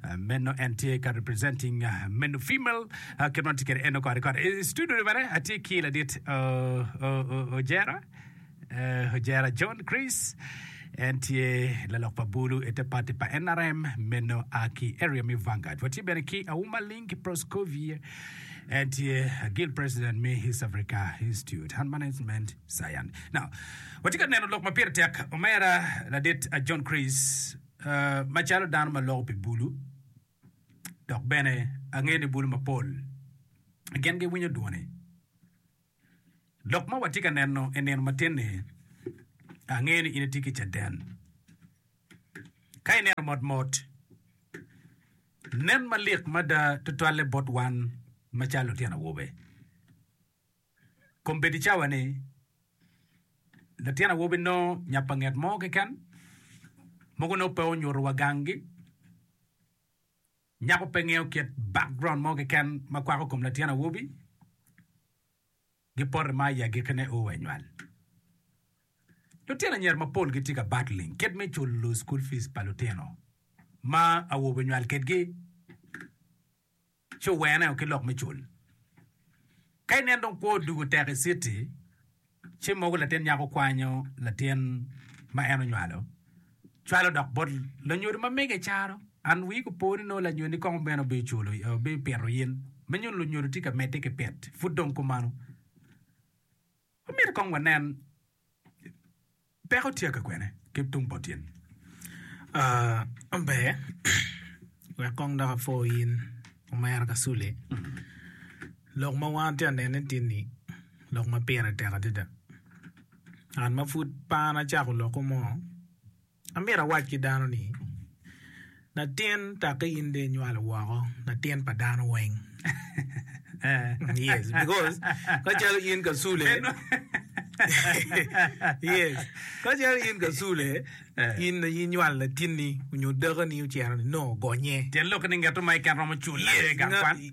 Uh, meno en tye ka representing uh, meno female uh, kit man tye kede eno kore kore I studio ni bene atye ki ladit uh, uh, uh, ojera uh, ojera john chris en tye lalok pa bulu ete pati pa nrm meno a ki area me vangard watye bene ki auma ling ki proscovia en tye guild president me east africa institute and management science now watye ka neno lok ma pire tek omera ladit uh, john chris Macalo dano ma loko pi bulu, dok bene angeyo ni bulu mapol gin giwinyo dwone. Lok ma watye ka neno i nino matin-ni, angeyo ni in itye ki caden. Ka ineno motmot, nen malik mada tutwalle bot wan macalo lutino awobe. kom bedo i cawa ni latin awobi nongo nya pa nget mo keken, mogo nongo pe onyuto wa gang gi, nyako pe ngeyo kit background mo keken ma kwako kom latin awobi, gipote ma i agiki ne oo wa i nywal. Lutino anyira mapol gitye ka battling kit me culo school fees pa lutino ma awobe onywal kedgi. Ci oweneo ki lok me cul. Ka inen dong kwo odwogo tek i citi, ci mogo latin nyako kwanyo latin ma en onywalo, cwalo dok bot lanyodo ma mege i caro. An wii gupo ni nongo lanyodi kong bene obipito in, me nyuto lunyodo tye ka medde ki pit. Pud dong kumano, wamito kong wanen Peko tye ka kwene ki tung pa tyeni? Aa mber wek kong dok apwo in omera Kasule lok ma wan atye ka nene tye ni lok ma pire tek adada an ma pud par acako lokko mo Amito awac ki dano ni, Latin taki in dong inywalo woko latin pa dano weng. yes, because kacalo in kasule, yes, kacalo in kasule, in na inywalo latinni onyo dakani ocero ni no ogonye. Tyen lok ni ngeto ma i ken romo cula, yes, gang kwan.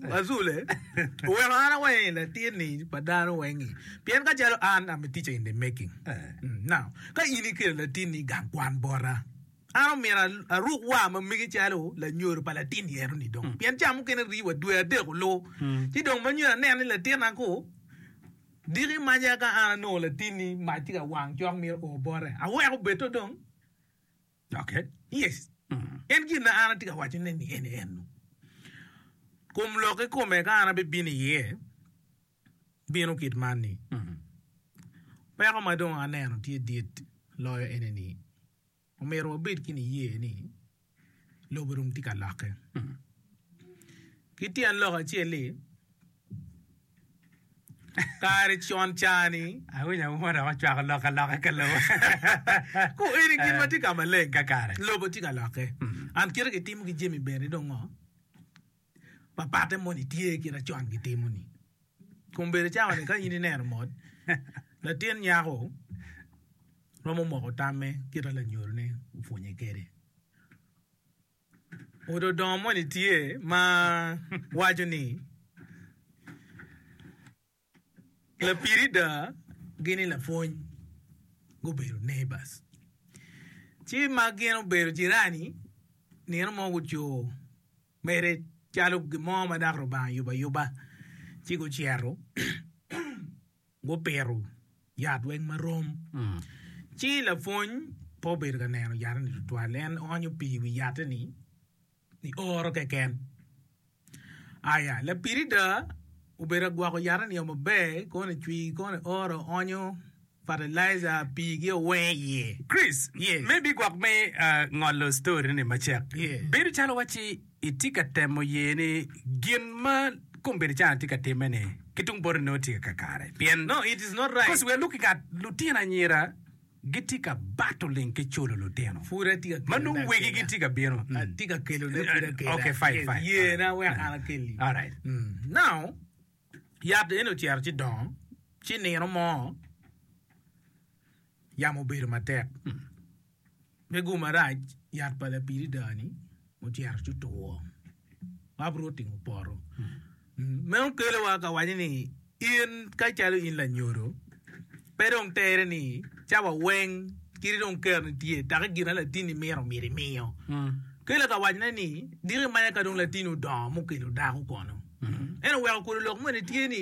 Azule, oweko an aweng i latin-ni pa dano weng-ngi, pien ka calo an am a teacher in the making. Now, ka in ikelo latin-ni i gang kwan bota, an omyero aruk war ma mege calo lanyodo pa latin yero-ni dong, pien ca mukene rii wa dwe adek olu, ci dong ma nyo aneno ni latina ku diki imaca ka an anongo latin-ni mac tye ka wang cok myero o bote, aweko bedo dong. Pien gin ma an atye ka wacone-ni en ennu, Kom lok kikome ka an abibino iye, bino kit man-ni, Peko ma dong aneno tye dit loyo ene-ni, Omyero wabed ki niye ni lobo dong tye ka lokke. Ki tyen lok acel-li, Kare con cani, awinyo auma dok acwako lok aloka ka lobo. Ku eni gin ma tye ka maleng kakare. Lobo tye ka lokke. And kite gitimo ki jami bene dong ngo? Papatte moni tye kit acon gitimo ni. Kun bedo cawa ni ka in ineno mot, latin nyako romo moko tamme kit a lanyorone opwonye kede. Pud odongo moni tye ma waco ni lapirida gi ni lapwony gubedo neighbors ci ma gin obedo jirani nino mo gucoo mere calo gin mo ma dako Lubanga oyubo ayuba ci gucito Gupito yat weng ma rom. Ci lapwony pe obedo ka neno yat-ti tutwal. En oonyo pii i wi yatte-ni i oro keken. Aya, lapirida obedo ka gwoko yatte-ni o maber, koni cwi, koni oro, oonyo fatalaija, pii gi o weng iye. Chris, me bigwok me ngolo story-ni macek, bedo calo wacci Itye ka temo ye ni gin ma kombeddi can atye ka timme ni ki tung boti nongo tye kakare pien kosi wer luk i ngat lutino anyira gitye ka bato ling ki culo lutino ma nongo wegi gitye ka bino Yat eni ocito ci dongo ci nino mo yamo obedo matek. Pego marac yat pa lapiridaa-ni mucito ci two, ma bro tingo poto. Meno kelowa ka waco ni in ka calo in lanyodo, pe dong tere ni cawa weng kadi dong keroni tye taki gin ma latinni mito myero imiyo. Kelo ka wacone ni diki manya ka dong latinni odongo mukelo dako kono. Ento weko kodo lok moni tye ni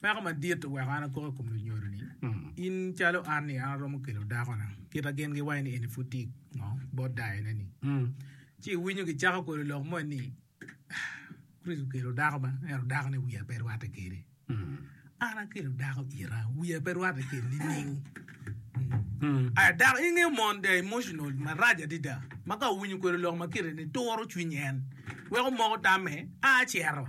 Peko madit oweko an akok i kom lunyodo-ni. In calo an-ni, an aromo kelo dakona, kit ma gin giwaco ni en-ni pud tye i ngo, bot dayone-ni. Ci iwinyo gicako kodo lok moni ni, Kricito okelo dako ma, ento dakone wiye pe rwatte kwede. An akelo dako ita, wiya pe rwatte kwede nining? Aya dako, ingeyo mon, they are emotional marac adada, ma ka owinyo kodo lok ma kite-ni, turo cwiny en, weko moko tamme, a cito.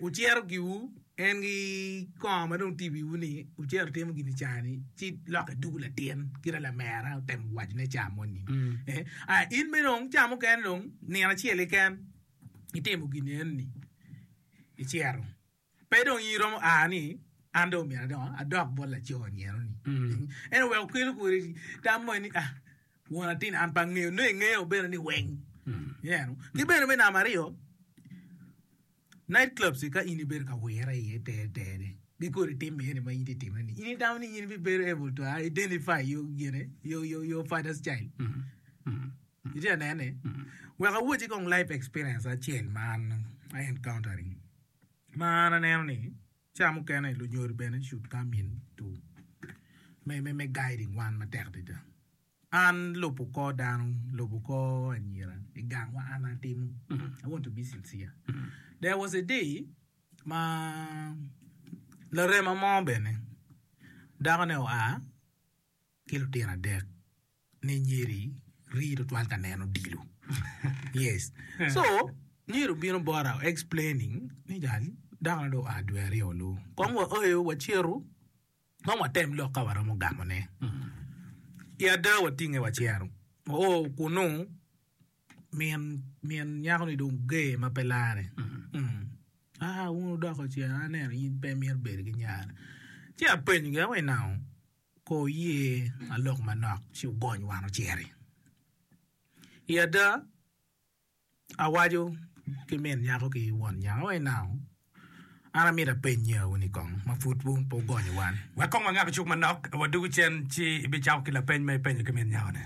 Wucero giwu en ki kongo ma dong tye i wiwu ni wucero itimo gin i caa ni, ci lokke dugu latin kit ma lamera otemo wacone caa moni. Aya, in bene dong caa mukene dong nino acel keken itimo gin eno ni, icero. Pe dong in iromo aa ni an dong omyero adong adok bot laco nino ni. Ento wek okelu kwede tam moni ni ah won atin an pe angeyo nongo ingeyo bene ni weng. Ineno? Ki bene me namba aryo, Night clubs-ci ka in ibedo ka wire iye tere tere-ni, gikor i tim eni ma in itye ka timone-ni, in itamo ni in ibibedo able to identify your gine, your, your, your father's child? Itye ka nene? Wek awacci kong life experience acel ma an I encountering, ma an aneno ni ca mukene lunyodi bene should come in to me, me, me guiding wan matek adada. An lubo kor dano, lubo kor anyira i gang ma an atimo. I want to be sincere. There was a day ma larema mo bene dako ne oa ki lutino adek ne nyeri rii tutwal ka neno odilo. Yes. So nyeri obino bota explaining ni jal dako ne dong oa dwe aryo loo. Kong wa oyo wacito Kong watem lok ka waromo gamone. I ada watinge wacito oo kunnu, min nyako-ni dong ger ma pe larre. Aa wun odoko ce, aneno in pe imito bedo ki nyare. Ci apenyogi, Awe nau ko wuye alok manok ci wugony wan ociti? I ada, awaco ki min nyako ki won nyako ni nau an amyero apenye wu ni kong ma pud wun pe wugonyo wan wek kong wangab cuk manok awodugu cen ci ibicako ki lapeny ma ipenyo ki min nyako ni.